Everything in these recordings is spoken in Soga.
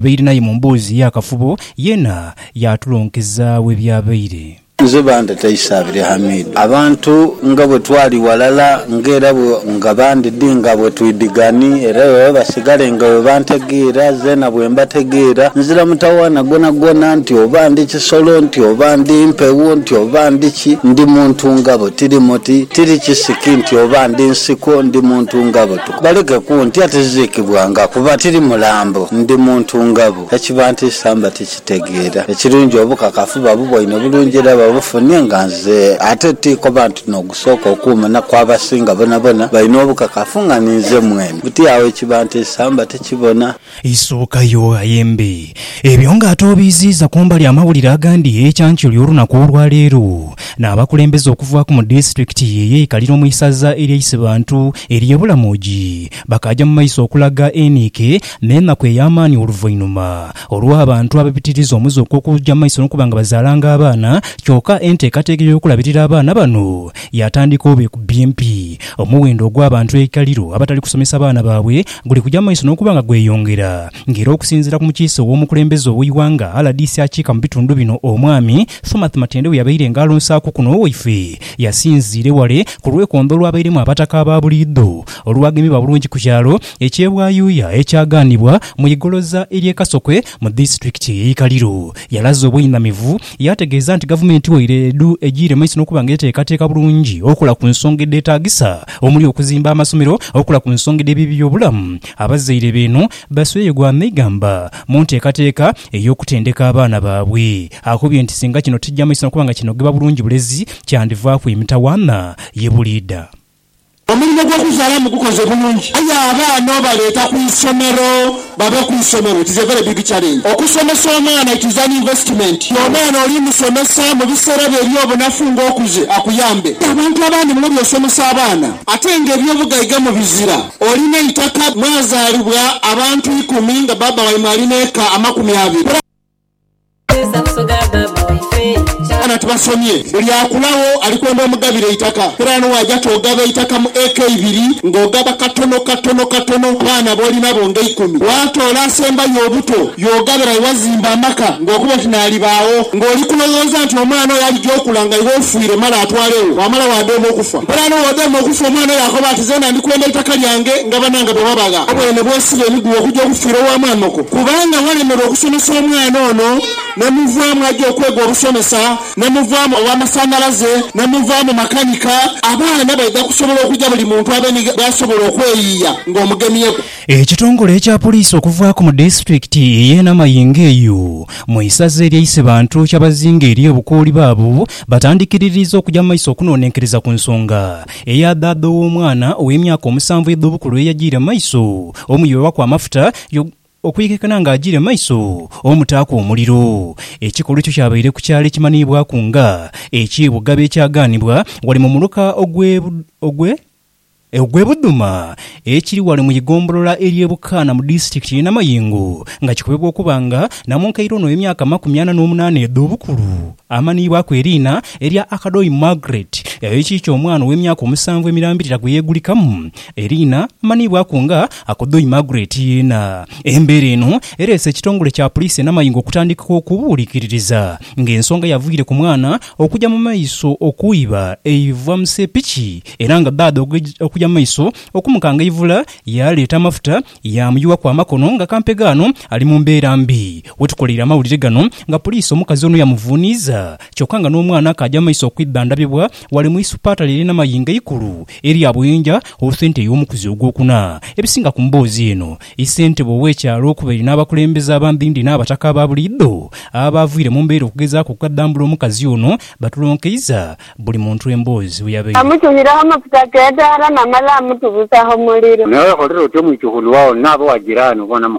Baire n'aye mu mboozi ey'akafubo yeena yaatulonkeza we byabaire. Nze banteta Isabire Hamidu. Abantu nga bwe twali ghalala nga era nga bandidi nga bwe twidhigani era baba basigale nga bwe bantegeera zeena bwe mbategeera. Nzira mutawaana gwonagwona nti oba ndi kisolo, nti oba ndi mpewo, nti oba ndi ki, ndi muntu nga bo. Tiri muti, tiri kisiki nti oba ndi nsiko, ndi muntu nga bo. Baleke kuntya, tiziikibwanga, kuba tiri mulambo, ndi muntu nga bo. Ekibantiisa mba tikitegeera. Ekirungi obukakafu babuboine bulungi era babufunye nga nze. Ate ti koba nti n'ogusooka okuuma na ku abasinga bonabona baina obukakafu nga ninze mwene. Buti agho ekibantiisa mba tikibona. Eisookayo, aye mbe, ebyo nga ate obiiziiza ku mbali amawulire agandi eyeekyankyoli olunaku olwa leero, n'abakulembeze okuvaaku mu disitulikiti eyeikalira omu isaza erya Isibantu erye Bulamogi bakaaja mu maiso okulaga eniike n'enaku ey'amaani oluvainhuma olw'abantu ababitiriza omuze ogw'okuja mu maiso n'okuba nga bazaalanga abaana kyoka enteekateeka ey'okulabirira abaana bano yaatandika oba ekubye empi omuwendo ogw'abantu eikaliro abatali kusomesa baana baabwe guli kuja maiso n'okuba nga gweyongera nga era okusinziira ku mukiise ow'omukulembeze ow'eighanga rdc akiika mu bitundu bino Omwami Thomath Matende bweyabaire nga alonsaaku kuno owaife yasinziire wale ku lwekondo olwabairemu abataka aba buliidho olwagemebwa bulungi ku kyalo ekye Bwayuuya ekyagaanibwa mu igoloza erye Kasokwe Mu disitulikiti ey'e Ikaliro, yalaze obweinamivu yaategeeza nti Gavumenti waire edhu egiire maiso n'okuba nga eteekateeka bulungi okola ku nsonga edheetaagisa omuli okuzimba amasomero, okola ku nsonga edh'eby'ebyobulamu, abazaire beeno basweye gwa meigamba mu nteekateeka ey'okutendeka abaana baabwe. Akobye nti singa kino tikija maiso n'okuba nga kinogibwa bulungi bulezi kyandivaaku emitawaana ye buliidha. Omulimo gw'okuzaalamu gukoze bulungi aye abaana obaleeta ku isomero babe ku isomero it is a very big challenge. Okusomesa omwana it is an investment ye omwana oli musomesa mu biseera byo eby'obunafu nga okuze akuyambe. Abantu abandi muno by'osomesa abaana ate nga eby'obugaiga mubizira. Olina eitaka mwazaalibwa abantu ikumi nga baaba waimwe alina eka amakumi abiri. Ghano tubasomye, Buli akulagho ali kwenda omugabire eitaka. Kera n'owaja ti ogaba eitaka mu eka ibiri, ng'ogaba katono katono katono ku baana b'oli nabo nga eikumi. Bw'atoola asembayo obuto, y'ogabira aye wazimba amaka, ng'okoba oti n'alibaagho. Ng'oli kulowooza nti omwana oyo alija okula nga iwe ofiire male atwalegho, wamala waadhooma okufa. Nkole ano w'odhooma okufa, omwana oyo akoba ati, Zeena ndi kwenda eitaka lyange nga banaange bwe babagha. Obwene bw'osiba emiguwa okugya okufiira owa maamoko. Kubanga walemerwa okusomesa omwana ono, ne muvaamu aja okwega obusomesa, ne muvaamu ow'amasanhalaze, ne muvaamu makanika, abaana baidha kusobola okuja buli muntu abenhige bw'asobola okweyiiya ng'omugemyeku. Ekitongole ekya poliisi okuvaaku mu disitulikiti ey'e Namayingo eyo mu isaza erya Isebantu kyabazinga eri obukooli baabo batandikiririiza okugya mu maiso okunonenkereza ku nsonga eya dhaadha ow'omwana ow'emyaka omusanvu edh'obukulu eyagiire mu maiso omuyiwa ku amafuta Yo okwikekana nga ajiire mu maiso omutaaku omuliro. Ekikolwa ekyo kyabaire ku kyalo ekimanhiibwaku nga eky'e Bugabe ekyagaanibwa ghale mu muluka ogw'e ogw'e Budhuma ekiri ghale mu igombolola ery'e Bukaana mu disitulikiti y'e Namayingo nga kikobebwa okuba nga namunkaire ono ow'emyaka amakumi ana n'omunaana edh'obukulu amanhiibwaku eriina erya Akadoi Margaret ekiikyo omwana ow'emyaka omusanvu emirambirira gwe yeegulikamu eriina amanhiibwaku nga Akudhui Margaret yeena. Embeera eno ereese ekitongole kya Puliisi e Namayingo okutandika okubuulikiririza nga ensonga yavaire ku mwana okuja mu maiso okwiba eiva mu sepiki era nga ddaadha okuja mu maiso okumukanga eivula yaaleeta amafuta yaamuyuwaku amakono nga kampega ano ali mu mbeera mbi. Wetukoleire amawulire gano nga Puliisi omukazi ono yamuvuuniiza kyoka nga n'omwana akaaja mu maiso okwidhandabibwa Ghale mu Isupata lye lina mayinga eikulu erya Buyinja owe sente ey'omukuzi ogwokuna. Ebisinga ku mboozi eno, Isentebe owe kyalo okubaire n'abakulembeze abandhindhi n'abataka aba buliidho abaavwire mu mbeera okugezaaku okukadambula omukazi ono batulonkeiza buli muntu emboozi bwe yabaire. Amutuhiraho amafuta k'edaala namala amutubusaho muliro. Naye oya kholera otyo mwichukhulu wao, n'abo wa jirani obona mu.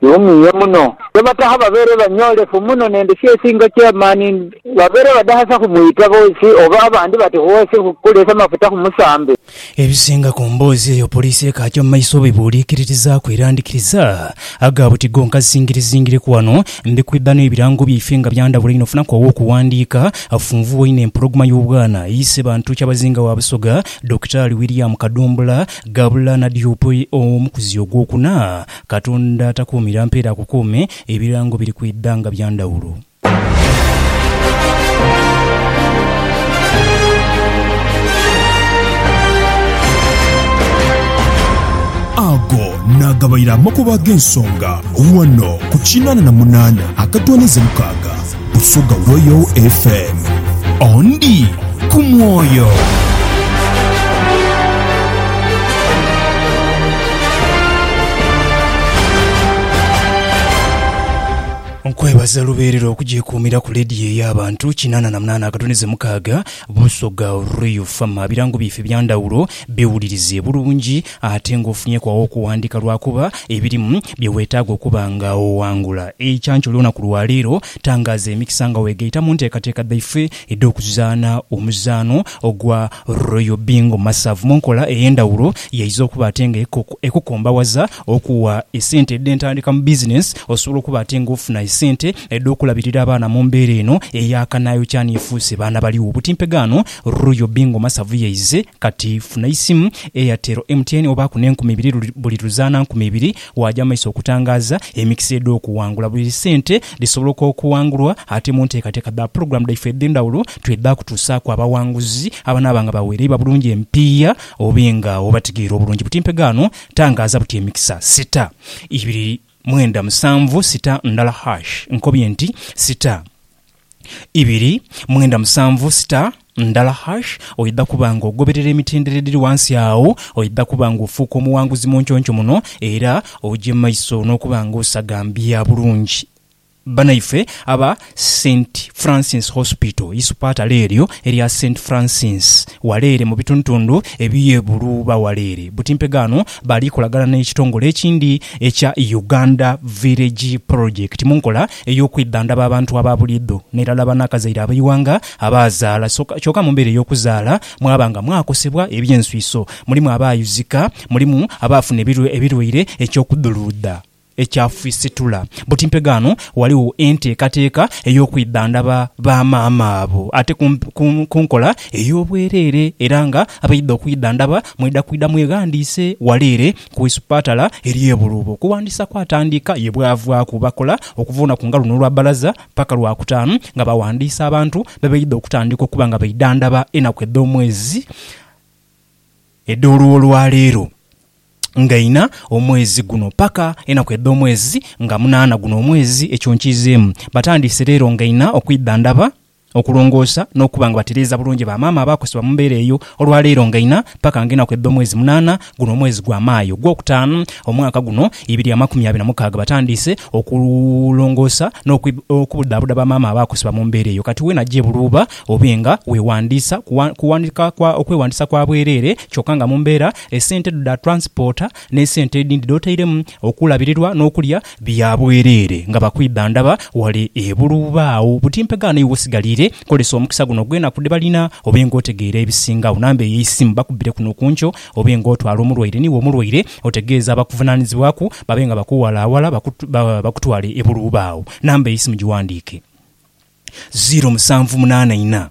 Kiwumiiye muno ye bataha babeere banyoolefu muno n'endhuki esinga eky'amaani. Babeere badahasa ku mwita boosi oba abandi bati hoosi hu kuleesa mafuta ku musambi. Ebisinga ku mboozi eyo poliisi ekaagya mu maiso bw'ebuuliikiritizaaku era ndhikiriza ago abuti gonka zingirizingireku wano. Mbikwidha n'ebirango byaife nga bya ndhawulo inho. Funaku ow'okuwandiika afunvu woine empologoma y'obwana eyi Ssebantu Kyabazinga wa Busoga, Dokitaali William Kadumbula, Gabula Nadiope, omukuzi ogw'okuna Katonda takuumira mpeera ku kuume, ebirango biri kwidha nga bya ndhawulo. Ago naagabaire amakubo ag'ensonga ghano ku kinaana na munaana akatooneza mukaaga. Busoga Royal FM. Ondi ku mwoyo. Nkwebaza lubeerera okugyekuumira ku leediyo ey'abantu kinaana na munaana akatunize mukaaga, Busoga Royal FM. Ebirango byaife bya ndhawulo, byewulirize bulungi. ate ng'ofunyeku aw'okuwandiika lwakuba ebirimu bye weetaaga okuba nga owangula eikyancu ly'olunaku lwa leero. Tangaaza emikisa nga weegaita mu nteekateeka dhaife edh'okuzaana omuzaano ogwa Royal Bingo Masavu mu nkola ey'endhawulo y'eidha okuba ate nga ekukombawaza okuwa esente edh'entandika mu bizinensi osobola okuba ate nga ofuna esente edh'okulabirira abaana mu mbeera eno eya kanaayokya n'efuuse baana baligho. Butimpegaano. Ruyo Bingo Masavu yaize kati funa isimu, Airtel, MTN obaaku n'enkumi ibiri buli luzaana nkumi ibiri waaja mu maiso okutangaaza emikisa edh'okuwangula. Buli sente dhisoboloka okuwangulwa ate mu nteekateeka dha pulogulaamu dhaifwe edh'endhawulo twidha kutuusaaku abawanguzi abanaaba nga bawereibwa bulungi emipiiya obe nga obategeera obulungi. Buti mpegaano tangaaza buti emikisa sita ibiri mwenda musanvu sita ndala hash. Nkobye nti sita. ibiri mwenda musanvu sita ndala hash, oidha kuba nga ogoberera emitendera edhiri ghansi agho, oidha kuba nga ofuuka omughanguzi mu nconco muno era oje mu maiso n'okuba nga osagambia bulungi. Banaife aba Saint Francis Hospital, isupatale eryo erya Saint Francis wale ere mu bitundutundu eby'e Buluuba wale ere butimpegho ghano, baali kolagana n'ekitongole ekindi ekya Uganda Village Project mu nkola ey'okwidhandhaba abantu aba buliidho n'erala banakazaire ab'eighanga abaazaala soka kyoka mu mbeera ey'okuzaala mwaba nga mwakosebwa eby'enswiso, mulimu abaayuzika, mulimu abaafuna ebirwaire, eky'okudhuluudha ekyafisitula. Buti mpegaano ghaligho enteekateeka ey'okwidhandhaba ba maama abo ate ku nkola ey'obwereere era nga abaidha okwidhandhaba mwidha kwidha mweghandiise ghale ere ku isupatala erye Buluuba okuwandiisa kwatandika ye bwavaaku bakola okuva olunaku nga luno olwa balaza paka lwakutaanu nga bawandiisa abantu bebeidha okutandika okuba nga beidhandhaba enaku edhomwezi edholwolwaleero nga ina omwezi guno paka enaku edhomwezi nga munaana guno omwezi ekyo nkiizeemu batandiise leero nga ina okwidhandhaba okulongoosa n'okuba nga batereeza bulungi ba maama abaakosebwa mu mbeera eyo olwa leero nga ina paka nga enaku edha omwezi munaana guno omwezi gwa Maayo ogwokutaanu omwaka guno ibiri amakumi abiri na mukaaga batandiise okulongoosa n'okubudhaabuda ba maama abaakosebwa mu mbeera eyo kati weena gye buluuba obe nga weewandiisa kuwandika kwa okwewandiisa kwa bwereere kyoka nga mu mbeera esente dho dha transporter n'esente edhindi dhotairemu Okulabirirwa n'okulya bya bwereere nga bakwidha ndaba wale ebulu. Baagho buti mpegha n'eiwe osigaliire. Kozesa omukisa guno gw'enaku dhe balina obe nga otegeera ebisingagho. Namba ey'eisimu bakubbireku n'okunkyo obe nga otwala omulwaire n'iwe omulwaire otegeeze abakuvunaanizibwaku babe nga bakuwalaawala bakutwale ebulu. Baagho namba ey'eisimu gighandiike, ziiro musanvu munaana inha.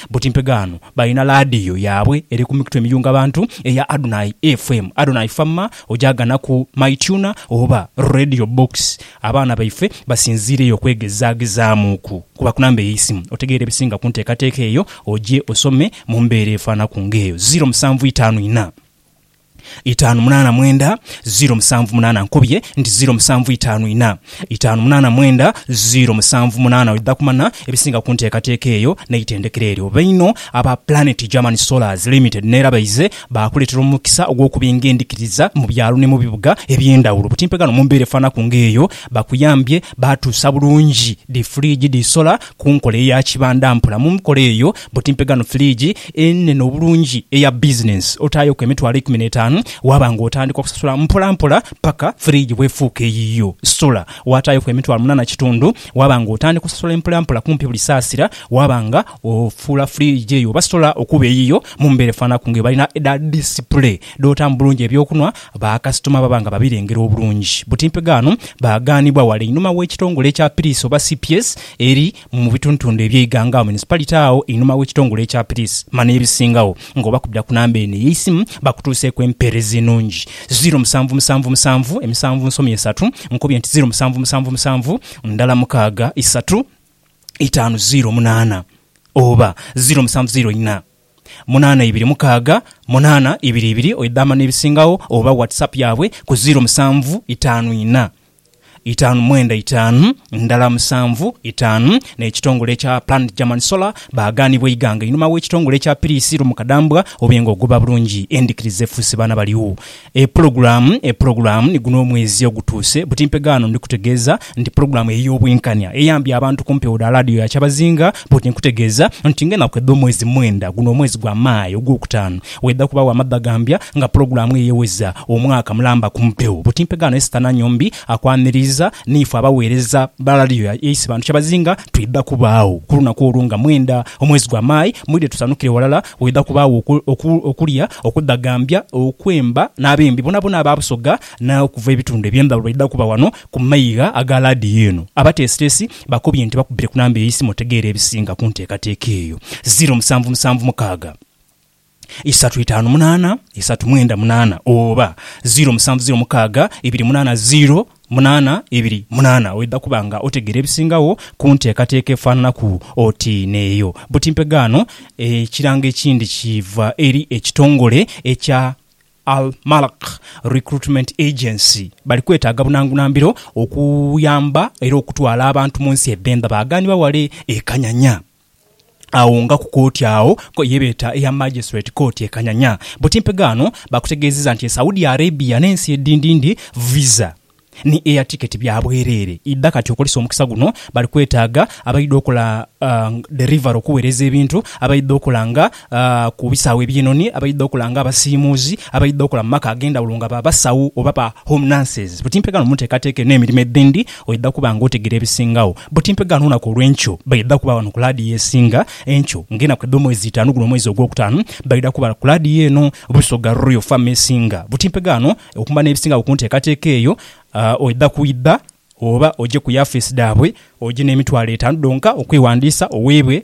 Buti mpegaano balina laadiyo yaabwe eri ku mikutu emiyunga bantu eya Adonai FM, Adonai Fama, ojaagana ku MyTuner oba Radio Box. Abaana baife basinziireyo okwegezaagezaamuuku. Kuba ku namba ey'eisimu otegeere ebisinga ku nteekateeka eyo oje osome mu mbeera efaanaku ng'eyo. Ziro musanvu itaanu inha. itaanu munaana mwenda ziiro musanvu munaana Nkobye nti ziiro musanvu itaanu ina itaanu munaana mwenda ziiro musanvu munaana Oidha kumanya ebisinga ku nteekateeka eyo n'eitendekero eryo. Bainho aba Planet German Solars Limited n'era baize baakuleetera omukisa ogw'okubinga endhikiriza mu byalo ni mu bibuga eby'endhawulo. Butimpe ghano mu mbeera efaanaku ng'eyo baakuyambye baatuusa bulungi dhi fridge dhi sola ku nkola eya kibanda mpola. Mu nkola eyo, Buti mpe ghano firiigi enene obulungi eya bizinensi, otaayoku emitwalo eikumi n'etaanu, waaba nga otandika okusasula mpolampola paka firiigi bw'efuuka eyiyo. Sola, waataayoku emitwalo munaana kitundu, waaba nga otandika osasula mpolampola kumpi buli saasira, waaba nga ofuula firiigi eyo oba sola okuba eyiyo mu mbeera efaananaku nga ebalina edha disipule dh'otaamu bulungi eby'okunwa, bakasitoma baba nga babirengera obulungi. Buti mpe ghano, baaghanibwa wala einhuma w'ekitongole ekya piriisi oba CPS eri mu bitundutundu eby'eighanga agho municipality agho einhuma w'ekitongole ekya piriisi mani ebisingagho nga obakubira ku namba eno ey'eisimu bakutuuseeku empeereza enungi. Ziro musanvu musanvu musanvu emisanvu nsomi esatu Nkubye nti ziro musanvu musanvu musanvu ndala mukaaga isatu itaanu ziro munaana oba ziro musanvu ziro ina. munaana ibiri mukaaga munaana ibiri ibiri oidhama n'ebisingagho oba WhatsApp yaabwe ku ziiro musanvu itaanu inha itaanu mwenda itaanu ndala musanvu itaanu n'ekitongole ekya Planned German Solar baagaanibwa eighanga einhuma w'ekitongole ekya Piriisi Lumukadambwa obe nga ogoba bulungi endhikiriza efuuse baana baliu. E pulogulaamu, E pulogulaamu ni guno omwezi ogutuuse. Butimpe ghano ndi kutegeeza nti pulogulaamu ey'Obwenkanya eyambye abantu ku mpewo dha laadiyo ya Kyabazinga. Bwoti nkutegeeza nti ng'enaku edh'omwezi mwenda, guno omwezi gwa Maayi ogwokutaanu, waidha kubagho amadhagambya nga pulogulaamu eyo eweza omwaka mulamba ku mpewo. Butimpe ghano Esther Nanyombi akwaniriiza niife abaweereza ba laadiyo ya East Bantu Kyabazinga twidha kubaagho ku lunaku olwo nga mwenda omwezi gwa Maayi. Mwidhe tusanukire ghalala Waidha kubaagho okulya, okudhagambya, okwemba, n'abembi boonaboona aba Busoga n'okuva ebitundu eby'endhawulo baidha kuba ghano ku maigha aga laadiyo eno. Abateesiteesi bakobye nti bakubbire ku namba ey'eisimu otegeere ebisinga ku nteekateeka eyo, ziro musanvu musanvu mukaaga isatu itaanu munaana isatu mwenda munaana oba ziro musanvu ziro mukaaga ibiri munaana ziro. munaana ibiri munaana oidha kuba nga otegeera ebisingagho ku nteekateeka efaananaku oti n'eyo. Buti mpegaano, ekirango ekindi kiva eri ekitongole ekya Al Malak Recruitment Agency. Bali kwetaaga bunangunambiro okuyamba era okutwala abantu mu nsi edh'endha baaganibwa wale e Kanyanya. Agho nga ku kooti agho ye beeta eya Magistrate Court e Kanyanya, buti mpegaano baakutegeezezza nti e Saudi Arabia n'ensi edindindi visa ni air ticket bya bwereere idha kati okozesa omukisa guno bali kwetaaga abaidha okola delivery okuweereza ebintu abaidha okola nga ku bisaawe eby'enoni abaidha okola nga abasiimuuzi, abaidha okola mu maka ag'endhawulo nga ba basawo oba ba home nurses. Buti mpegaano mu nteekateeka eno emirimo edhindi oidha kuba nga otegera ebisingagho. Buti mpegaano olunaku olw'enkyo baidha kuba wano ku laadiyo esinga enkyo nga enaku edh'omwezi itaanu guno omwezi ogwokutaanu baidha kuba ku laadiyo eno Busoga Royal Fm esinga. Buti mpegaano okumanya ebisingagho ku nteekateeka eyo oidha kwidha oba oje ku yafeesi dhaabwe oje n'emitwalo etaanu dhonka okwewandiisa oweebwe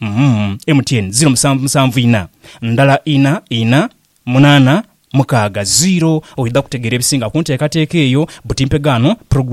Uhmm MTN ziro musanvu musanvu ina ndala ina ina munana mukaaga ziro oidha kutegeera ebisinga kunteekateeka eyo buti mpegaano program.